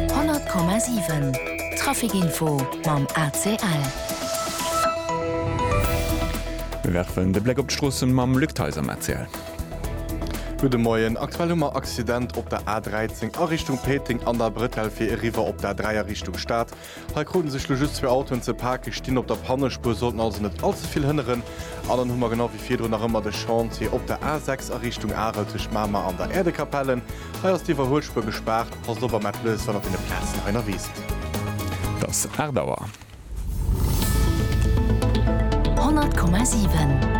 100,7 Trafic Info mam ACL. Mir werfen de Bléck op d'Stroossen mam Luc Theis am ACL. Gudde Moien, aktuell hu mer Accident op der A13 a Richtung Péiteng an der Brëtell fir eriwwer op d'A3 a Richtung Stad. Hei kruten sech lo just zwee Autoen ze paken, stinn op der Pannespuer, sollten also net all ze vill hënneren. An dann hu mer genau wéi virdrun nach ëmmer de Chantier op der A6 a Richtung Arel tëscht Mamer an der Äerdekapelle. Hei ass d'Iwwerhuelspuer gespaart. Passt op a maacht Lues, wann der op deene Plazen hei ënnerwee sidd. Et ass 8 Auer. 100,7.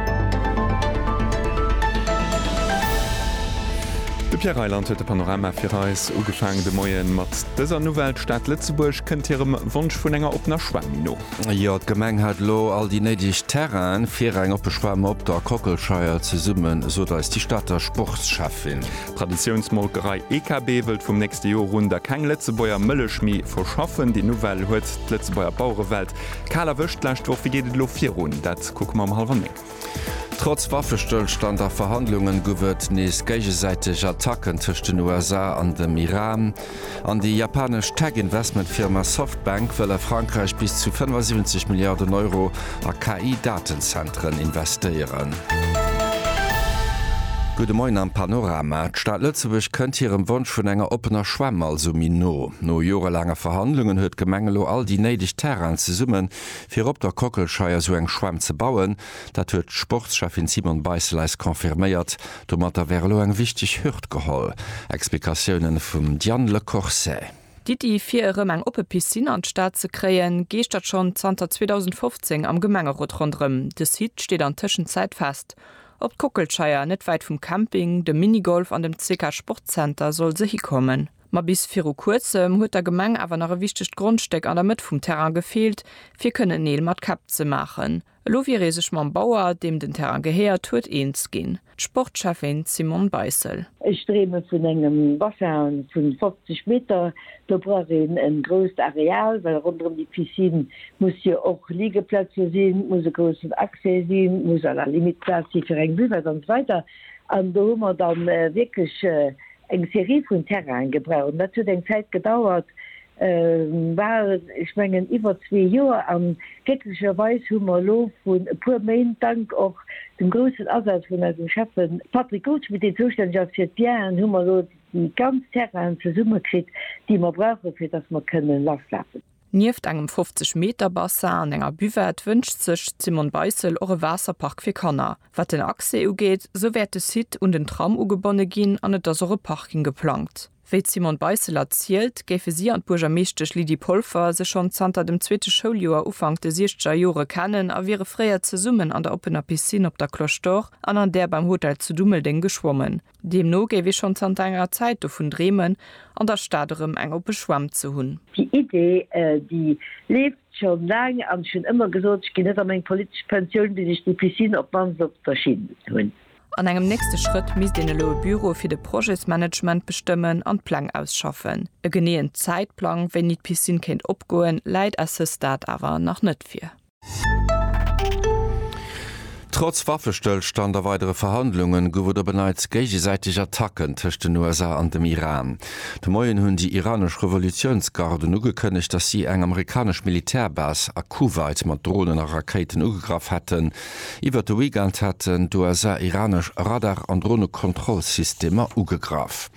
De Pierre Reyland huet de Panorama fir eis ugefaangen de Moie mat Dëser Nouvelle Stad Lëtzebuerg kënnt hirem Wonsch vun enger oppener Schwämm no. Jo, d'Gemeng hat elo all déi néideg Terrainen fir eng oppe Schwämm op der Kockelscheier zesummen, sot eis déi Stater Sportschäffin. D'Traditiounsmolkerei EKB wëllt vum nächste Jor un da keng Lëtzebuerger Mëllech méi verschaffen. Déi Nouvelle huet d'Lëtzebuerger Bauerewelt kal erwëscht d'lescht Woch. Wéi geet et elo virun? Dat kucke mer ëm hallwer néng. Trotz Waffestëllstand a Verhandlungen gouf et nees géigesäiteg Attacken tëscht den USA an dem Iran. An déi japanesch Tech-Investmentfirma Softbank wëll a Frankräich bis zu 75 Milliarden Euro a KI-Datenzenteren investéieren. Gudde Moien am Panorama. D'Stad Lëtzebuerg kënnt hirem Wonsch vun enger oppener Schwämm also méi no. No jorelaanger Verhandlungen huet d'Gemeng elo all déi néideg Terrainen zesummen, Fir op der Kockelscheier esou eng Schwämm ze bauen, dat huet d'Sportscheffin Simone Beissel eis confirméiert. Domatter wär elo eng wichteg Hürd geholl. Explikatiounen vum Diane Le Corset. D'Iddi fir erëm eng oppe Piscine an d'Stad ze kréien, geeschtert schonn zanter 2015 am Gemengerot ronderëm. De Site steet an Tëschenzäit fest. Op d'Kockelscheier, net wäit vum Camping, dem Minigolf an dem CK Sportzenter soll se hikommen. Ma bis viru kuerzem huet der Gemeng awer nach e wichtegt Grondstéck an der Mëtt vum Terrain gefeelt, fir kënnen Neel mat Käpp ze maachen. Elo wier ee sech mam Bauer, deem den Terrain gehéiert huet, eens ginn. D'Sportschäffin Simone Beissel. Ech dreeme vun engem Bassin vu 50 Meter. Do brauch een e grousst Areal, well ronderëm déi Piscine muss jo och Ligeplaze sinn, et muss e groussen Accès sinn, et muss à la limite Plaz si fir eng Buvette an esou weider. An do hu mer da wierklech Eng Serie vun Terrainen gebraucht. Dat huet eng Zäit gedauert, bal, ech mengen, iwwer zwee Joer. A glécklecherweis hu mer elo vrun e puer Méint, dank och dem groussen Asaz vun eisem Schäffe Patrick Goldschmidt, deen zoustänneg ass fir d'Bienen, hu mer elo déi ganz Terrainen zesummekritt, déi mer brauchen, fir dass mer kënnen lasschafen. Nieft engem 50 Meter Bassin an enger Buvette wënscht sech d'Simone Beissel och e Waasserpark fir Kanner. Wat den Accès ugeet, sou wäert de Site un den Tram ugebonne ginn an et ass och e Parking geplangt. Wéi d'Simone Beissel erzielt, géife si an d'Buergermeeschtesch Lydie Polfer sech schonn zanter dem zweete Schouljoer, Ufank de siechzeger Jore kennen a wiere fréier zesummen an der oppener Piscine op der Cloche d'Or an an där beim Hotel zu Dummeldeng geschwommen. Deemno géif ee schonn zanter enger Zäit dovun dreemen, an der Stad erëm eng oppe Schwämm ze hunn. Déi Idee, déi leeft scho laang an ech hunn ëmmer gesot, ech ginn net a meng politesch Pensioun, bis ech déi Piscine op d'mannst op der Schinn hunn. An engem nächste Schrëtt misst een elo e Büro fir de Projetsmanagement bestëmmen an d'Pläng ausschaffen. E geneeën Zäitplang, wéini d'Piscine kéint opgoen, läit à ce stade awer nach net vir. Trotz Waffestëllstand a weidere Verhandlungen gouf et op en Neits géigesäiteg Attacken tëscht den USA an dem Iran. De Moien hunn déi iranesch Revolutiounsgarden ugekënnegt, datt si eng amerikanesch Militärbase a Kuwait mat Dronen a Rakéiten ugegraff hätten. Iwwert de Weekend haten d'USA iranesch Radar an Dronekontrollsystemer ugegraff.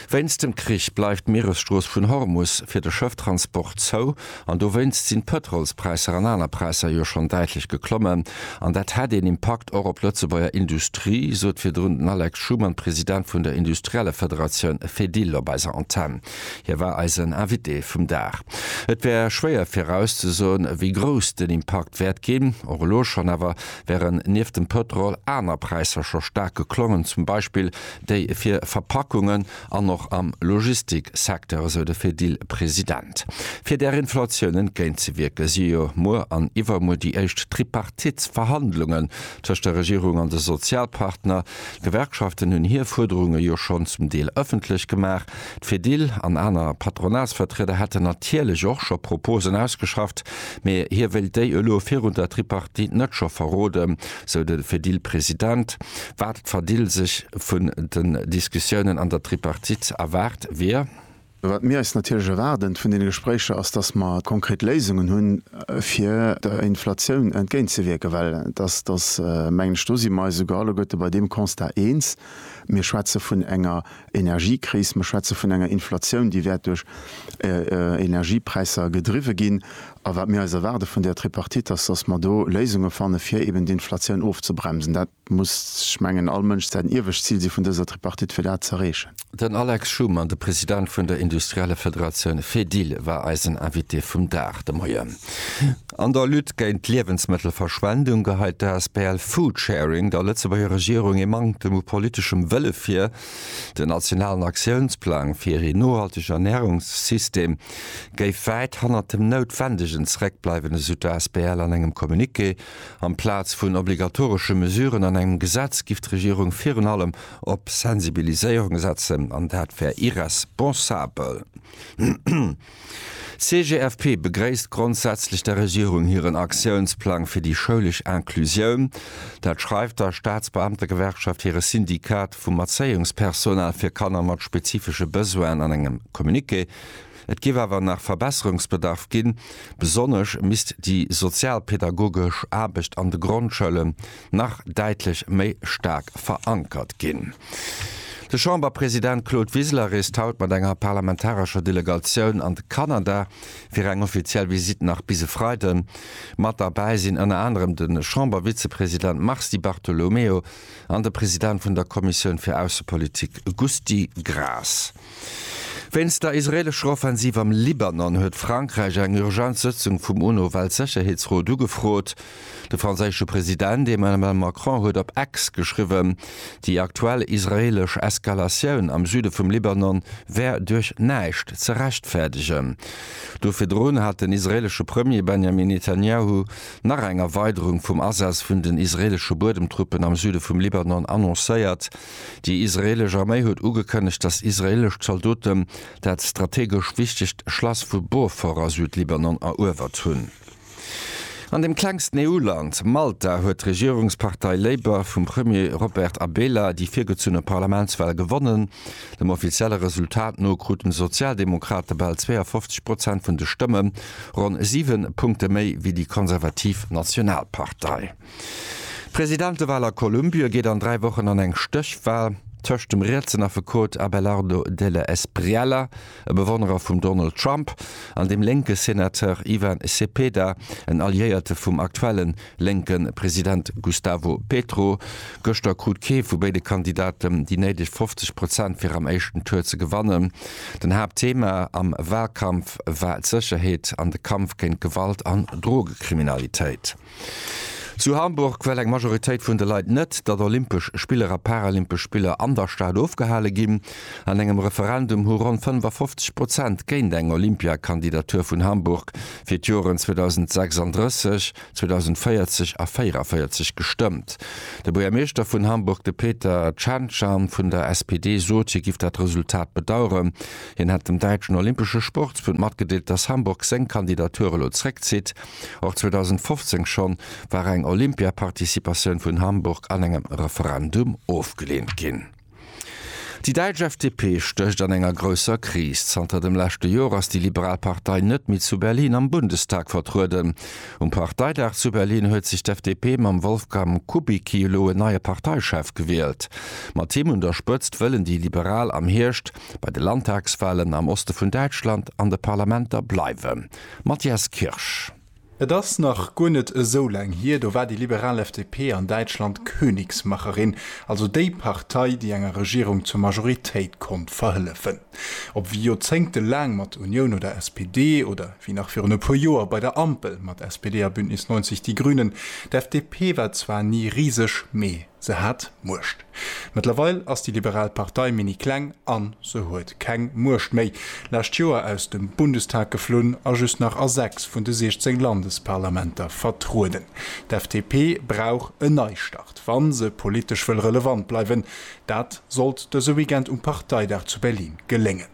Wéinst dem Krich bleift d'Mieresstrooss vun Hormus fir de Schëfftransport zou an dowéinst sinn d'Pëtrolspräisser an aner Präisser jo schonn däitlech geklommen. An dat hätt een Impakt och op d'Lëtzebuerger Industrie, sot virdrun den Alex Schumann, President vun der Industriellefederatioun Fedil op eiser Antenn. Hie war eisen Invité vum Dag. Et wär schwéier virauszesoen, wéi grouss den Impakt wäert ginn. Och elo schonn awer wären nieft dem Pëtrol aner Präisser scho staark geklommen, zum Beispill déi fir Verpackungen an och am Logistik-Secteur, esou de Fedil-President. Fir där Inflatioun entgéint ze wierken, si jo muer an iwwermuer déi éischt Tripartite-Verhandlungen tëscht der Regierung an de Sozialpartner. D'Gewerkschaften hunn hir Fuerderunge jo schonn zum Deel ëffentlech gemaach. D'Fedil an aner Patronatsvertrieder hätten natierlech och scho Proposen ausgeschafft, mee hie wéilt déi elo virun der Tripartite net scho verroden. sou de Fedil President. Wat d'Fadil sech vun den Diskussiounen an der Tripartite erwaart, wier. Wat mir eis natierlech erwaarden vun deene Gespréicher ass, datt mer konkret Léisungen hunn, fir der Inflatioun entgéint ze wierken, well datt ass, mengen ech, do si mer eis esouguer alleguerte bei deem Constat eens, mir schwätze vun enger Energiekris, mer schwätze vun enger Inflatioun, déi wäert duerch Energiepräisser gedriwwe ginn. A wat mir eis erwaarde vun där Tripartite ass, dass mer do Léisunge fanne fir eben d'Inflatioun ofzebremsen. Dat muss, ech mengen, all Mënsch säin iewescht Zil si vun dëser Tripartite, fir dat z'erreechen. Den Alex Schumann, de President vun der Industrielle Federatioun Fedil, war eisen Invité vum Dag de Moien. An der Lutte géint d'Liewensmëttelverschwendung geheit d'Asbl Foodsharing der Lëtzebuerger Regierung ee Manktem u politeschem Wëlle vir. Den nationalen Aktiounsplang fir een nohaltege Ernärungssystem géif wäit hannert dem Noutwendegen zeréckbleiwen, esou d'Asbl an engem Communiqué. Amplaz vun obligatoresche Mesuren an engem Gesetz giff d'Regierung virun allem op Sensibiliséierung setzen, an dat wär irresponsabel. D'CGFP begréisst grondsätzlech der Regierung hiren Aktiounsplang fir déi schoulesch Inclusioun. Dat schreift der Staatsbeamtegewerkschaft hire Syndikat vum Erzéiungspersonal fir Kanner mat spezifesche Besoinen an engem Communiqué. Et géif awer nach Verbesserungsbedarf ginn, besonnesch misst déi sozialpädagogesch Aarbecht an de Grondschoule nach däitlech méi staark verankert ginn. De Chamberpresident Claude Wiseler reest haut mat enger parlamentarescher Delegatioun an de Kanada fir eng offiziell Visitt nach bis e Freiden. Mat derbäi sinn ënner anerem de Chambervizepresident Mars Di Bartolomeo an de President vun der Kommissioun fir Aussepolitik Gusty Graas. Wéinst der israeelescher Offensiv am Libanon huet Frankräich eng Urgenzsëtzung vum UNO-Weltsécherheetsrot ugefrot. De franséische President Emmanuel Macron huet op X geschriwwen, déi aktuell israeelesch Eskalatioun am Süde vum Libanon wär duerch näischt ze rechtfäerdegen. Do virdrun hat den israeelesche Premier Benjamin Netanjahu nach eng Erweiderung vum Asaz vun den israeelesche Buedemtruppen am Süde vum Libanon annoncéiert. Déi israeelesch Arméi huet ugekënnegt, datt israeelesch Zaldoten dat strategesch wichtegt Schlass vu Beaufort a Südlibanon eruewert hunn. An dem klengsten EU-Land, Malta, huet d'Regierungspartei Labour vum Premier Robert Abela déi virgezunne Parlamentswal gewonnen. Dem offizielle Resultat no kruten d'Sozialdemokrate bal 52 Prozent vun de Stëmmen, ronn siwe Punkte méi wéi déi konservativ Nationalpartei. D'Presidentewal a Kolumbie geet an dräi Wochen an eng Stéchwal tëscht dem rietsen Affekot Abelardo Delle Espriella, e Bewonnerer vum Donald Trump, an dem lénke Senateur Ivan Cepeda, en Alliéierte vum aktuelle lénke President Gustavo Petro. Gëschter krut kee vu béide Kandidaten déi néideg 50 Prozent fir am éischten Tour ze gewannen. Den Haaptthema am Walkampf war d'Sécherheet an de Kampf géint Gewalt an Drogekriminalitéit. Zu Hamburg well eng Majoritéit vun de Leit net, datt Olympesch Spiller a Paralympesch Spiller an der Stad ofgehale ginn. An engem Referendum hu ronn 55 Prozent géint eng Olympiakandidatur vun Hamburg fir d'Joren 2036, 2040 a 44 gestëmmt. De Buergermeeschter vun Hamburg, de Peter Cancian vun der SPD, sot, hie giff dat Resultat bedaueren. Hien hätt dem däitschen Olympesche Sportsbund matgedeelt, datt Hamburg seng Kandidatur elo zréckzitt. Och 2015 schonn war eng Olympia-Participatioun vun Hamburg an engem Referendum ofgeleent ginn. Déi däitsch FDP stécht an enger grousser Kris. Zanter dem leschte Joer ass déi liberal Partei net méi zu Berlin am Bundestag vertrueden. Um Parteidag zu Berlin huet sech d'FDP mam Wolfgang Kubicki elo en neie Parteichef gewielt. Mat him un der Spëtzt wëllen déi Liberal am Hierscht bei de Landtagswalen am Oste vun Däitschland an de Parlamenter bleiwen. Matthias Kirsch, Et ass nach guer net esou laang hier, do war déi liberal FDP an Däitschland Königsmacherin, also déi Partei, déi enger Regierung zur Majoritéit konnt verhëllefen. Ob wéi Joerzéngte laang mat Unioun oder SPD, oder wéi nach virun e puer Joer bei der Ampel mat SPD a Bündnis 90 Die Grünen, d'FDP war zwar ni riseg, mee se hat Muecht. Mëttlerweil ass déi liberal Partei mini kleng an se huet keng Muecht méi. Lescht Joer aus dem Bundestag geflunn a just nach a 6 vun de 16 Landesparlamenter vertrueden. D'FDP brauch en Neistart, wa se politesch wëll relevant bleiwen. Dat sollt dëse Weekend um Parteidag zu Berlin geléngen.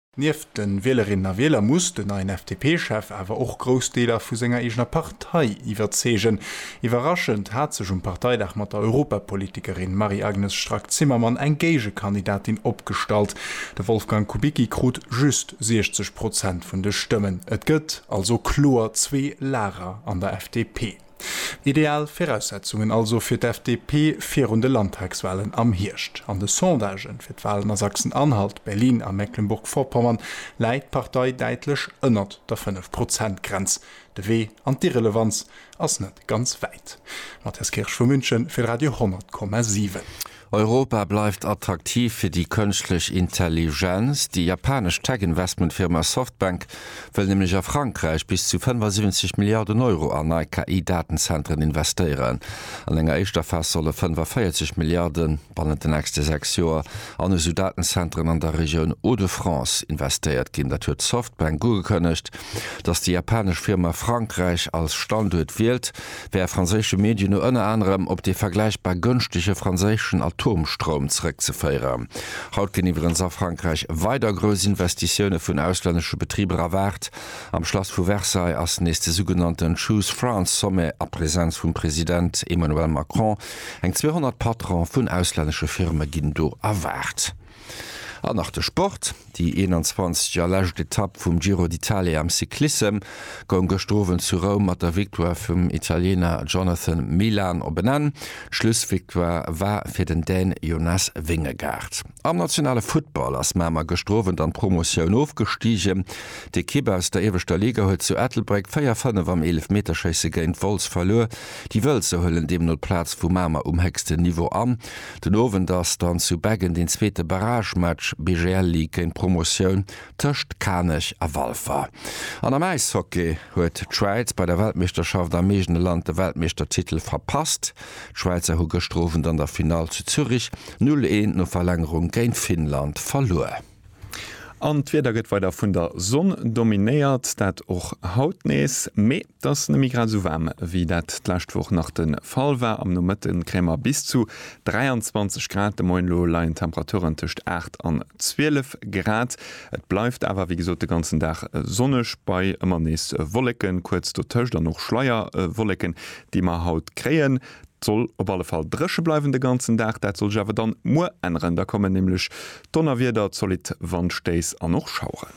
Nieft de Wielerinnen a Wieler muss den neien FDP-Chef awer och grouss Deeler vu senger eegener Partei iwwerzeegen. Iwwerraschend hat sech um Parteidag mat der Europapolitikerin Marie-Agnes Strack-Zimmermann eng Géigekandidatin opgestallt. De Wolfgang Kubicki krut just 60 Prozent vun de Stëmmen. Et gëtt also kloer zwee Lager an der FDP. Ideal Viraussetzungen also fir d'FDP virun de Landtagswalen am Hierscht. An de Sondagen fir d'Walen a Sachsen-Anhalt, Berlin a Mecklenburg-Vorpommern läit d'Partei däitlech ënnert der 5 Prozent Grenz. De Wee an d'Irrelevanz ass net ganz wäit. Matthias Kirsch vu München fir Radio 10,7. Europa bleift attraktiv fir déi kënschtlech Intelligenz. Déi japanesch Tech-Investmentfirma Softbank wëll nämlech a Frankräich bis zu 75 Milliarden Euro an nei KI-Datenzenteren investéieren. An enger éischter Phas solle 45 Milliarde bannent den nächste sechs Joer an esou Datenzenteren an der Regioun Hauts-de-France investéiert ginn. Dat huet Softbank ugekënnegt, datt déi japanesch Firma Frankräich als Standuert wielt, wär franséische Medien no ënner anerem op dee vergläichbar gënschtege franséischen Atomstroum zeréckzeféieren. Haut ginn iwwerens a Frankräich weider grouss Investitioune vun auslännesche Betriber erwaart. Am Schlass vu Versailles ass nees de sougenannte Choose France Sommet a Presenz vum President Emmanuel Macron. Eng 200 Patrone vun auslännesche Firme ginn do erwaart. An nach de Sport, Déi 21 a lescht Etapp vum Giro d'Italia am Cyclissem goung gëschter Owend zu Roum mat der Victoire vum Italiener Jonathan Milan op en Enn. D'Schlussvictoire war fir den Dän Jonas Vingegaard. Am nationale Futtball ass Mamer gëschter Owend an d'Promotioun ofgestigen. D'Ekipp aus der ieweschter Liga huet zu Ettelbréck 4, 5 am Eelefmeterschéisse géint Wolz verluer. Déi Wëlzer huelen deemno d'Plaz vu Mamer um héchsten Niveau an. Den Owend ass dann zu Beggen den zweete Barragematch, BGL League géint Promotioun, tëscht Kanech a Walfer. An am Äishockey huet d'Schwäiz bei der Weltmeeschterschaft am eegene Land de Weltmeeschtertitel verpasst. D'Schwäizer hu gëschter Owend an der Finall zu Zürich 0, 1 no Verlängerung géint Finnland verluer. An d'Wieder gëtt weider vun der Sonn dominéiert, dat och haut nees, mee et ass nëmme grad esou waarm, wéi dat d'lescht Woch nach de Fall war. Am Nomëtte kréie mer bis zu 23 Grad, de Moien elo leien d'Temperaturen tëscht 8 an 12 Grad. Et bleift awer, wéi gesot, de ganzen Dag sonneg, bei ëmmer nees Wolleken kuerz dotëscht an och Schleierwolleken, déi mer haut kréien. 't soll op alle Fall dréche bleiwen de ganzen Dag, dat soll sech awer dann muer änneren, da kommen nämlech Donnerwieder, zolidd Wandstéiss an och Schaueren.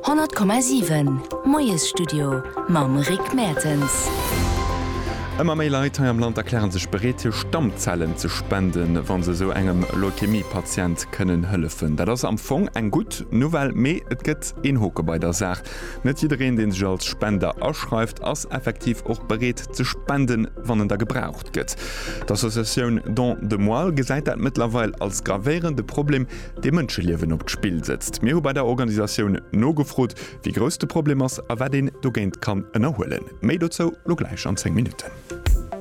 100,7 Moiesstudio mam Rick Mertens. Ëmmer méi Leit hei am Land erkläre sech bereet, hir Stammzellen ze spenden, wa se esou engem Leukemie-Patient kënnen hëllefen. Dat ass am Fong eng gutt Nouvelle, mee et gëtt een Hoke bei der Saach, Net jiddereen, deen sech als Spender aschreift, ass effektiv och bereet ze spenden, wann en da gebraucht gëtt. D'Associatioun Don de Moelle gesäit dat mëttlerweil als gravéierende Problem, dee Mënscheliewen op d'Spill sëtzt. Mir hu bei der Organisatioun nogefrot, wéi grouss de Problem ass a wat een dogéint kann ënnerhuelen. Méi dozou lo gläich an 10 Minutten.